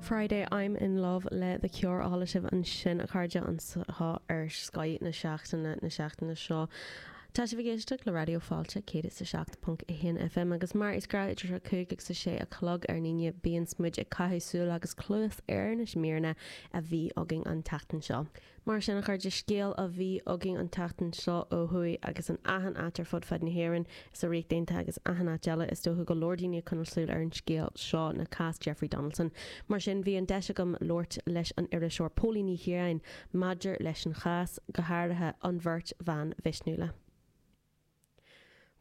Friday I'm in Love le The Cure a chuala sibh ansin a chairde anseo ar Scoth na Seachtaine na seachtaine seo. Tá sibh ag éisteacht le Raidió Fáilte 107.1 FM agus mar is gnáth idir 5 agus 6 a chlog ar an Aoine bíonns muid ag caitheamh súil agus cluas ar na míreanna a bhí againn an tseachtain seo. Mar sin a chairde, scéal a bhí againn an tseachtain seo ó thuaidh agus in achan áit ar fud fad na hÉireann is sa Ríocht Aontaithe agus achan áit eile is dócha go leor daoine ag coinneáil súil ar an scéal seo le cás Jeffrey Donaldson mar sin bhí an deis agam labhairt leis an iriseoir Póilín Ní Chiaráin maidir leis an chás, go háirithe an bheirt bhan mhisniúla.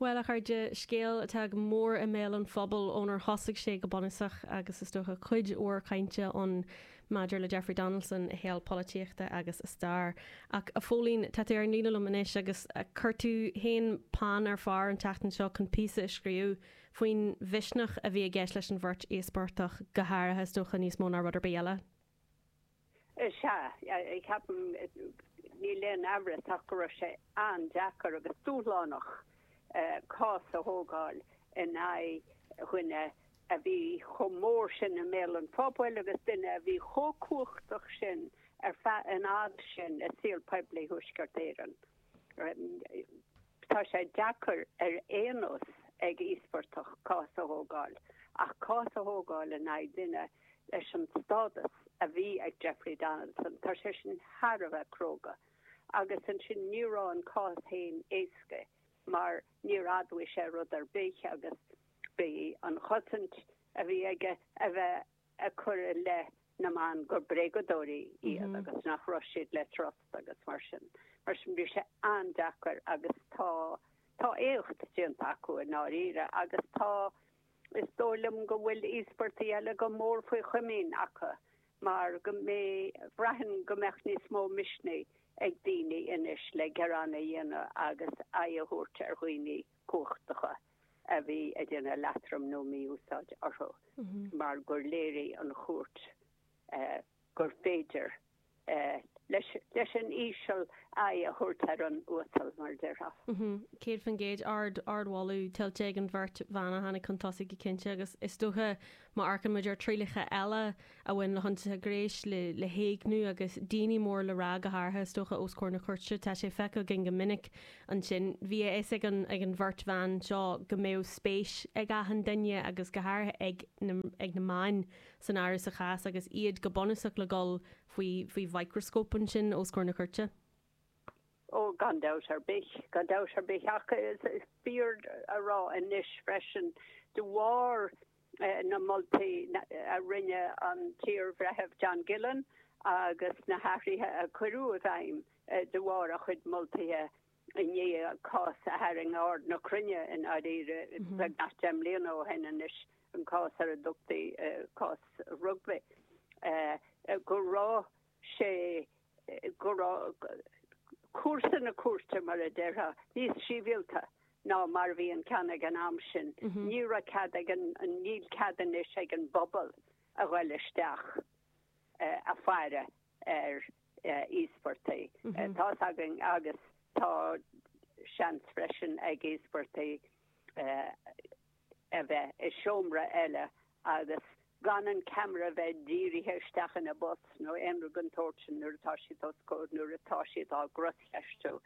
Bhuel, a chairde, scéal atá go mór i mbéal an phobail ónar thosaigh sé go bunúsach agus is dócha cuid mhór cainte ann maidir le Jeffrey Donaldson, a shaol polaitíochta agus a stair. Ach, a Phóilín, tá tú ar an líne liom anois agus chuir tú féin peann ar phár an tseachtain seo chun píosa a scríobh faoin mhisneach a bhí i gceist leis an bheirt íospartach, go háirithe, is dócha, níos mó ná rud ar bith eile. Sea, ceapaim, níl aon amhras ach go raibh sé an-deacair agus dúshlánach cás a thógáil in aghaidh dhuine a bhí chomh mór sin i mbéal an phobail agus duine a bhí chomh cumhachtach sin ar feadh an fhad sin i saol poiblí Thuaisceart Éireann. Tá sé deacair ar aon nós ag íospartach cás a thógáil, ach cás a thógáil in aghaidh duine leis an stádas a bhí ag Jeffrey Donaldson, tá sé sin thar a bheith cróga. Agus ansin ní raibh an cás féin éasca mar níor admhaigh sé rud ar bith agus bhí an chosaint a bhí aige a bheith ag cur i leith na mban gur bréagadóirí iad agus nach raibh siad le trust agus mar sin. Mar sin, bhí sé an-deacair agus tá, tá éacht déanta acu i ndáiríre agus tá, is dóigh liom go bhfuil íospartaigh eile go mór faoi chomaoin acu mar go mbeidh, bhraithfinn go mbeadh níos mó misnigh ag daoine anois le gearán a dhéanamh agus aghaidh a thabhairt ar dhaoine cumhachtacha. a bhí ag déanamh leatrom nó mí-úsáid orthu mar gur léirigh an chúirt gur féidir leis an íseal aghaidh a thabhairt ar an uasal, mar a déarfá. 100% ardmholadh tuillte ag an bheirt bhan a tháinig chun tosaigh go cinnte agus is dócha Má amharcann muid ar thrialacha eile a bhain le hionsaithe gréisc, le héigniú agus daoine mór le rá go háirithe, is dócha, os comhair na cúirte, tá sé feicthe againn go minic ansin. Bhí a fhios ag an ag an bheirt bhan seo go mbeadh spéis ag achan duine, agus go háirithe ag na ag na meáin, san áireamh sa chás agus iad go bunúsach le dhul faoi faoi mhicreascóp ansin os comhair na cúirte. Ó, gan dabht ar bith, gan dabht ar bith, ach is fíor a rá anois freisin, de bharr na moltaí a rinne an t-iar-bhreitheamh John Gillen agus na hathruithe a cuireadh i bhfeidhm de bharr a chuid moltaithe i ndiaidh cás a tharraing aird na cruinne i ndáiríre beagnach deich mbliana ó shin anois, an cás ar a dtugtaí cás Rugby, go raibh. sé go raibh cúrsa na cúirte, mar a déarfá, níos síbhialta ná mar a bhí an ceann ag an am sin. Ní raibh cead ag an, níl cead anois ag an bpobal a ghoil isteach ag faire ar íospartaigh. Tá's againn agus tá seans freisin ag íospartaigh a bheith i seomra eile agus gan an ceamara a bheith dírithe isteach ina bpus nó aon rud den tsórt sin nuair atá siad os comhair, nuair atá siad á gcroscheistiú,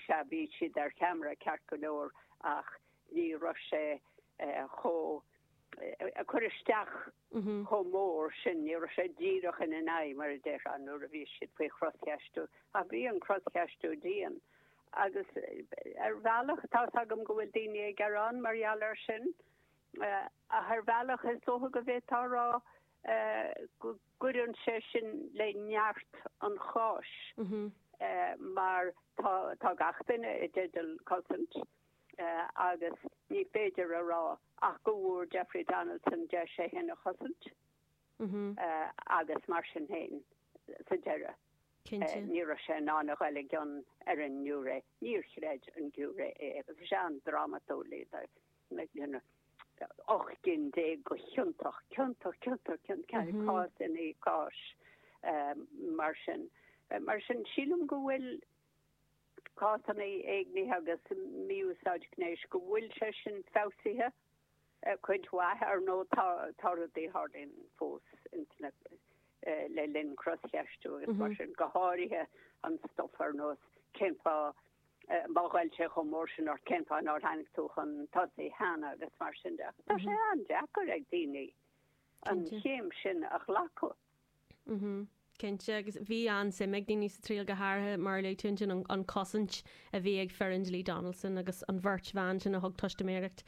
sea, bhí siad ar cheamara, ceart go leor, ach ní raibh sé chomh, ag cur isteach chomh mór sin, ní raibh sé díreach ina n-aghaidh, mar a déarfá, nuair a bhí siad faoi chroscheistiú, ach bhí an croscheistiú dian. Agus ar bhealach, tá's agam go bhfuil daoine ag gearán mar gheall air sin, ach ar bhealach is dócha go bhféadfá a rá go gcuireann sé sin le neart an cháis mar tá gach duine i dteideal cosaint agus ní féidir a rá ach go bhfuair Jeffrey Donaldson deis é fhéin a chosaint agus mar sin fhéin. sa deireadh. Cinnte. Ní raibh sé in ann a ghoil i gcion ar an ngiúiré, níor chreid an giúiré é, agus, sea, an-drámatúil, you know, ocht gcinn déag go ciontach, ciontach, ciontach, ciontach, cás i ndiaidh cáis, mar sin. Mar sin, sílim go bhfuil cásanna éignithe agus mí-úsáid gnéis, go bhfuil sé sin feabhsaithe, Cuid mhaith, ar ndóigh. Tá rudaí a tharlaíonn fós le linn croscheistiú agus mar sin, go háirithe an stuif ar nós cén fáth, má ghoill sé chomh mór sin ort, cén fáth nár tháinig tú chun tosaigh cheana agus mar sin de. Tá sé an-deacair ag daoine an chéim sin a ghlacadh. Mhm. Cinnte. Agus bhí an-suim ag daoine sa triail, go háirithe, mar a luaigh tú ansin, an, an chosaint a bhí ag foireann dlí Donaldson agus an bheirt bhan sin a thug teistiméireacht.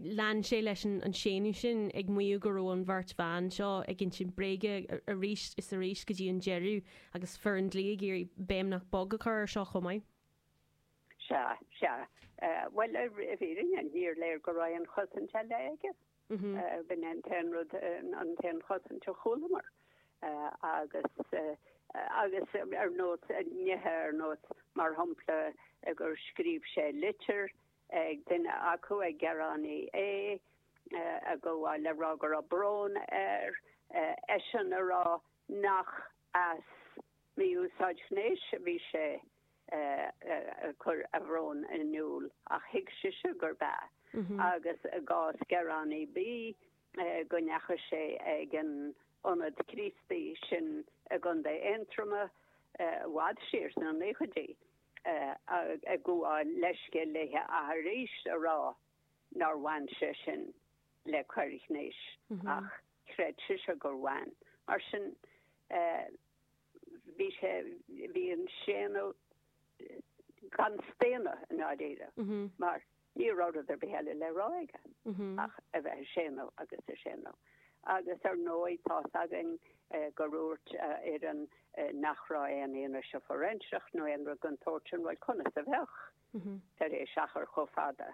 Lean sé leis an, an séanadh sin, ag maíomh go raibh an bheirt bhan seo ag insint bréige arís is arís go dtí an deireadh agus foireann dlí ag iarraidh béim nach bog a chur ar seo chomh maith. Sea, sea. Eh, bhuel, i, i bhfírinne, níor léir go raibh aon chosaint eile aige. B'in an t-aon rud, an t-aon chosaint a chualamar agus agus ar nós nithe ar nós mar shampla gur scríobh sé litir ag duine acu ag gearánaí A ag gabháil le rá go raibh brón air, eisean a rá nach as mí-úsáid ghnéis a bhí sé ag cur a bhrón in iúl ach thuig sise gurbh ea agus i gcás Gearánaí B go ndeachaigh sé ag an Ionad Críostaí sin i gContae Aontroma i bhfad siar sna naochaidí ag gabháil leithscéil léi ach arís a rá nár bhain sé sin le coir ghnéis ach chreid sise gur bhain. Mar sin. bhí sé, bhí an séanadh gan staonadh i ndáiríre mar ní raibh rud ar bith eile le rá aige ach a bheith ag séanadh agus ag séanadh. Agus ar ndóigh tá's againn gur dhúirt a fhoireann nach raibh aon fhianaise fóiréinseach nó aon rud den tsórt sin, bhuel conas a bheadh tar éis achar chomh fada?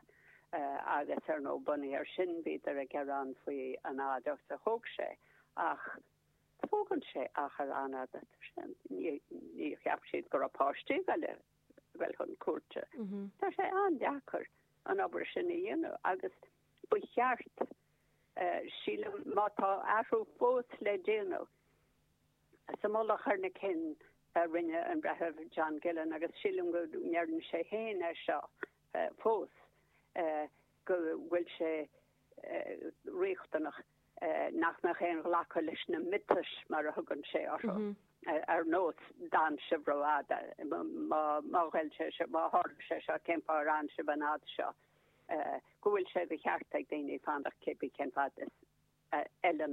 Agus ar ndóigh bunaithe air sin bhíodar ag gearán faoi an fhad a thóg sé ach, Tógann sé achar an-fhada, ní cheap siad go raibh páistí ag dul chun cúirte. Tá sé an-deacair an obair sin a dhéanamh agus ba cheart, sílim, má tá athrú fós le déanamh sa mhullach ar na cinn a rinne an Breitheamh John Gillen, agus sílim go ndeireann sé féin é seo fós, go bhfuil sé riachtanach. nach mbeadh aon ghlacadh leis na miotais, mar a thugann sé orthu, ar nós d'fhan sibh rófhada, má ghoill sé seo, má tharla sé seo, cén fáth ar fhan sibh an fhad seo, go bhfuil sé de cheart ag daoine fanacht cé bith cén fad is a fheileann